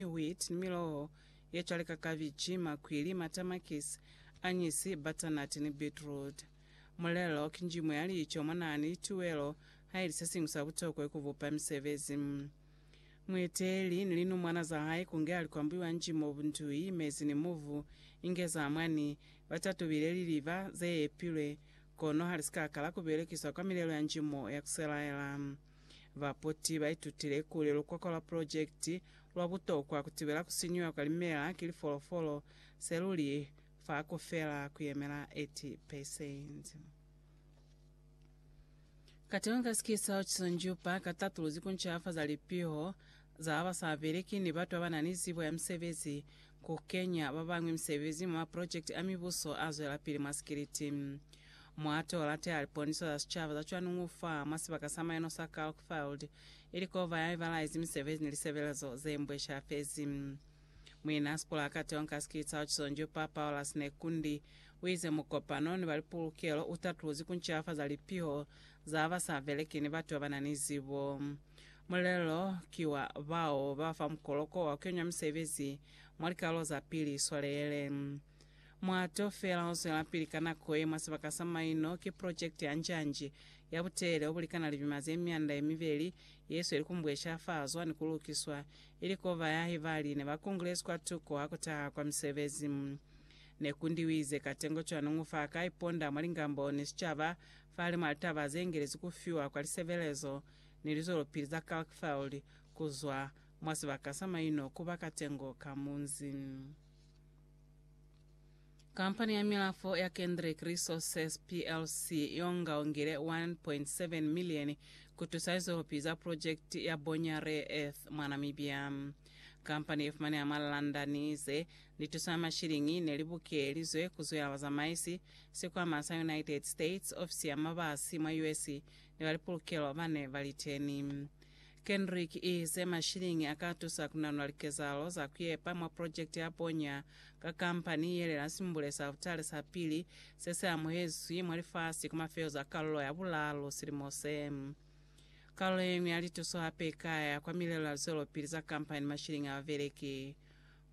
ni wheat, ni miloho ye cwale ka kabitši, makwili, matamakisi, anyisi, butternut ni beetroot. Mulelo ki njimu ya lico mwa naha ni lituwelo haili se siñwi sa butokwa ku bupa misebezi. Mueteeli ni linumwana za hae kunge ali kwa mbuiwa njimu obu ntui, mezi ni muvu, inge za mwani, ba tatubile liliba ze epilwe, kono hali si ka kala ku belekiswa kwa milelo ya njimu ya ku selaela. Baputi ba itutile kuli lukoko lwa pulojekiti lwa butokwa ku tibela ku sinyuha kwa limela ki lifolofolo se luli fa ku fela ku yemela 80 peresenti. Katengo ka sikisao ki sonjupa ka tatuluzi ku ncafaza lipiho za ba sa beleki ni batu ba ba na ni zibo ya misebezi, ku kenya ba bañwi misebezi mwa maprojekiti a mibuso a zwelapili mwa sikiliti. Mwa to lateha liponiso za sicaba za cwanuñu fa mwa sibaka sa mayano sa Kalkfeld, ili kova ya ibalaizi misebezi ni lisebelezo ze mbweshelafezi. Muina a sipula ka teo nka sikiliti sa Oxonjo, Pa Paulus Nekundi, u ize mukopano ni ba lipulukelo u tatuluzi ku ncilafaza lipiho za ba sa beleki ni batu ba ba na ni zibo. Mulelo ki wa bao ba fa mukoloko wa ku kenya misebezi mwa likalolo za pili Iswaleele. Muhato feela o zwelapili ka nako ye mwa sibaka sa maino ki projekiti ya njanji ya butelele o bulikana lipima ze mianda ye mibeli ye sweli ku mbweshafazwa ni ku lukiswa, ili k'o bayahi ba line ba kungulezi kwa tuko ha ku taha kwa misebezi. Ne ku ndiwize katengo cwani ngu fa ka iponda mwa lingambo ni sicaba fahalimw'a litaba ze ingelezi ku fiwa kwa lisebelezo ni lizwelopili za Kalkfeld ku zwa mwa sibaka sa maino ku ba katengo ka munzi. Kampani ya Milafo ya Kendrick Resources plc y'onga ongile 1.7 milieni ku tusa lizwelopili za pulojekiti ya bonya rare earth mwa Namibia. Kampani ye fumaneha mwa London ize, Ni tusa mashiliñi ne li bukelizwe ku zwela bazamaisi, sikwama sa United States, ofisi ya mabasi mwa US, ni ba lipulukelo ba ne ba li teni. Kendrick i ize mashiliñi a ka tusa ku nanula likezahalo za ku yepa mwa pulojekiti ya boña ka kampani ye lela simbule sa altare sa pili se si amuhezwi mwa lifasi ku mafezo a kalulo ya bulalu silimo se. Kalulo ye ñwi ya lituso hape i ka ya kwa milelo ya lizwelopili za kampani ni mashiliñi a babeleki.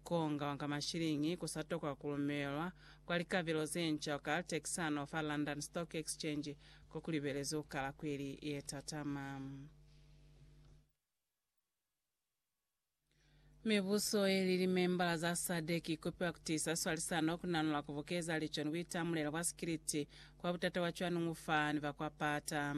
Kunga ka mashiliñi ku sa tokwa ku lumelwa kwa likabelo ze nca ka Texano fa London Stock Exchange ko ku libelezi ku kala kweli ye tatama. Mibuso ye li limembala za SADC i kupiwa ku tiisa swalisano, ku nanula, ku bukeza lico ni buitamulelo bwa sikiliti kwa butata bwa cwani ng'u fa ni ba kwa pata.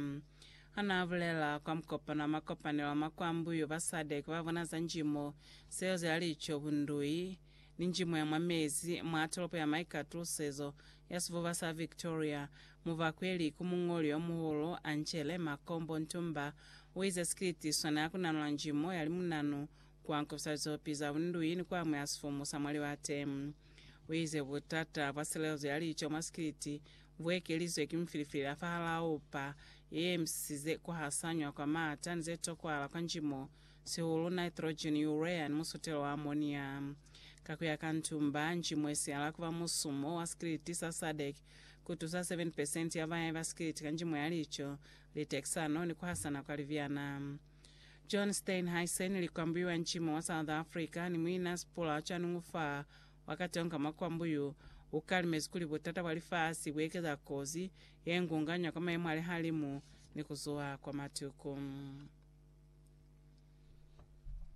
Hanaabulela kwa mukopano wa makopanelo a makwambu yo ba Sadec babona za njimo, seezo ya lico, bundui, ni njimo ya mwa mezi mwa tolopo ya maikatusezo ya sifuba sa Victoria, mubakweli ku muñoli yomuhulu Angele Makombo Ntumba uize sikiliti sona ya kunanula njimo ya limunanu kwa nkofisa lizopi za bundui ni kuamuhela sifumu sa mwa libate. Uize butata bwa selezo ya lico mwa sikiliti bu ekelizwe ki mufilifili la fahalao, pa ye emisisize ku hasanywa kwa maata ni ze tokwala kwa njimo, sihulu nitrogen, urea, ni musutelo wa amonia. Ka ku ya ka Ntumba, njimo ye sihala ku ba musumo wa sikiliti sa SADC, ku tusa 7 percent ya bayahi ba sikiliti ka njimo ya lico, litekisano, ni ku hasana kwa libyana. John Steinhuisen, likwambuiwa njimo wa South Africa, ni muina sipula ca Nungu fa Wakatonga makwambu yo ukalimezi kuli butata bwa lifasi buekeza kozi yengunganya kwa mayemo alihalimu ni kuzuha kwa matuku.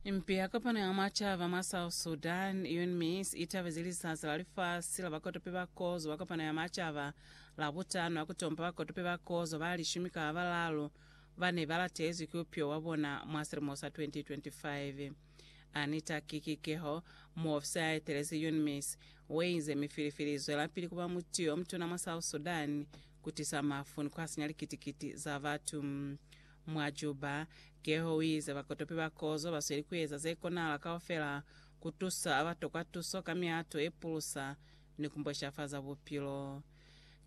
Impi ya kopano ya mwa caba mwa South Sudan, UNMISS, itabezi Lisasi la Lifasi la Bakotopi ba Kozo ba Kopano ya Macaba Labutano ha kutompa bakotopi ba kozo ba lishumi ka babalalu bane balatezwi ki upyo wabona mwa silimo sa 2025. Anita Kikikeho, muofisa ya etelezi UNMISS, ueize mifilifili izwelapili kuba muti yomutuna mwa South Sudan, kutisa mafu ni kuhasinya likiti-kiti za batu. Mwa Juba, Keho uize bakotopi ba kozo basweli kueza zekonahala kaufela kutusa abatokwa tuso ka mihato yepulusa ni kumbweshafaza bupilo.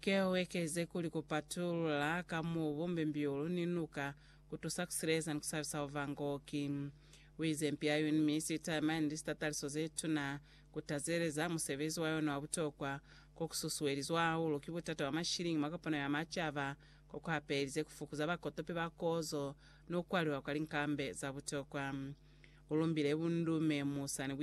Keho uekelize kuli kupatulula ka mubu, mbimbiulu ni nuka Ku tusa ku sileza ni ku sabisa ova ngo ki wize mpi ya yuni, mi si talimani ni sitataliso ze tuna. Ku tazeleza musebezi wa yona wa butokwa ko ku susuelizwa hahulu ki butata bwa mashiliñi mwa kopano ya macaba ko ku hapelize ku fukuza bakotopi ba kozo ni ku kwaliwa kwa linkambe za butokwa. U lumbile bundume mu sa ni buikanyo.